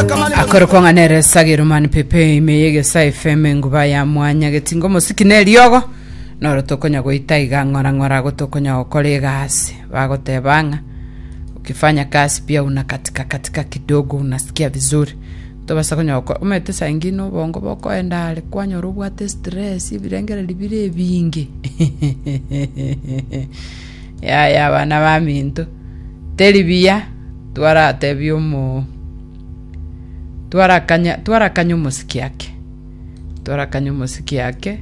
Akorokwa ng'a nere esagero mani pepe ime yegesa efm enguba ya mwanya getinga omosiki na eriogo noro tokonya goita iga ng'ora ng'ora ago tokonya gokora egasi bagoteba ng'a ukifanya kazi pia una katika katika kidogo unasikia vizuri tobasa konya goko omete saa ingine obongo bokoenda are kwanyora obwate stress ebirengereri bire ebinge Yaya, abana baminto, teri buya twaratebie omo... Twarakanya, twarakanya omosike ake, twarakanya omosike ake,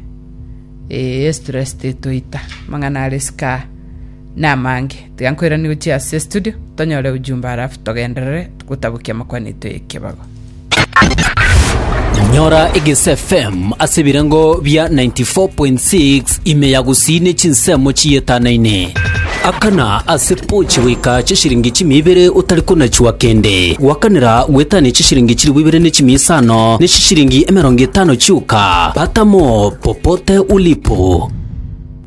ee, estress tetoita, amang'ana are isiko aa namange. Tiga nkoiranie gochia ase estudio, tonyore ujumbe alafu togenderere gotabokia amakwanetwa 'ekebago. Nyora Egese FM ase ebirengo bia 94.6 ime ya gusii ne chinsemo chiyetanaine. Akana ase pochi goika chishiringi chimia ibere otari konachua kende. Gwakanera gwetania chishiringi chilifu ibere ne chimia isano ne chishiringi emerongo etano chioka. Pata mo popote ulipo.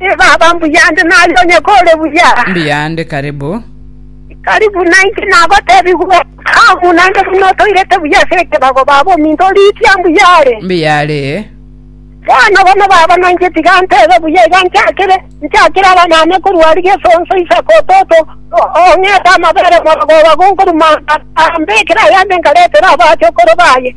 E Baba, mbuya nde nare onye kore buya. Mbuya nde karibu. Tari buna inche nagotebigwe, aa, buna nde buna otoirete buya ase ekebago, Baba, ominto oriitia mbuya are. Mbuya are. Bono bono, Baba, na inche tiga ntebe buya iga nchakire, nchakire abanyaancha korwa aria gesonso Isaka ototo, o- ong'ete amabere morogoba gonkorumanta, ambekere ayande nkaretere abaacha okoro baye.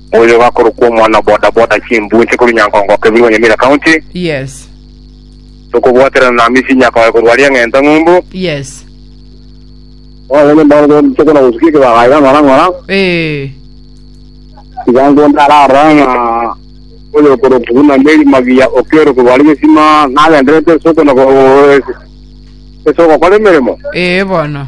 Oyo gakorokwa omwana o boda boda chimbuu inche korwa Nyankongo Kebirwa Nyamira County. Yes. Tokobwaterana na Hamisi Nyakoe korwa aria Ng'enta Ng'umbu. Yes. Bono onye mbono bono titokona gosukia ekebaga iga ng'ora ng'ora. Ee. Iga ngonde ararora ng'a oyo okorokwa buna Mary Magiya Okello korwa aria Gesima nagendererete ase okona go- ase ogokora emeremo. Ee bono.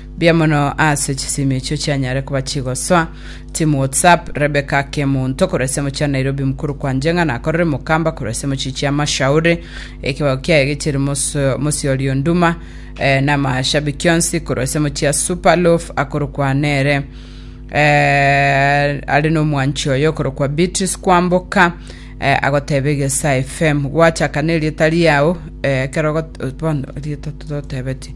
Mbuya mono ase chisimi echio chianyare koba chigosoa. Team WhatsApp, Rebecca ake omonto korwa esemo chia Nairobi mokuru kwanje ng'a nakorere mokamba korwa esemo chi chia Mashauri. Ekebago kiaye gechiri moso- mosiori onduma eh, na amashabi kionsi korwa esemo chia Superloaf akorokwa nere eh, are nomwanchi oyo okorokwa Beatrice Kwamboka eh, agoteba egesa FM gwachaka nerieta riao eh, ekero ogot- bono rieta totebeti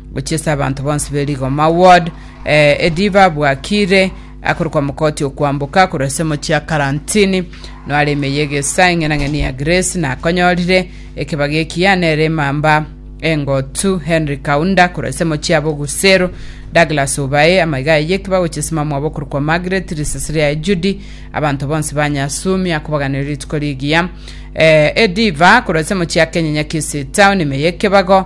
Gochia ase abanto bonsi be rigoma, ward, eh, ediba abwakire akorokwa omokoti okwamboka korwa ase omochie ya karantini noare emeye egesa eng'enang'eni ya Grace nakonyorire ekebaga ekiya nere emamba engotu Henry Kaunda korwa ase omochie ya Bogusero Douglas Obae amaiga aye ekiba gochia ase mamwabo okorokwa Margaret risasiri yaye Judy abanto bonsi ba Nyasumi akobaganera rituko rigiya eh, ediva korwa ase omochie ya Kenyenya Kisii Town emeye ekebago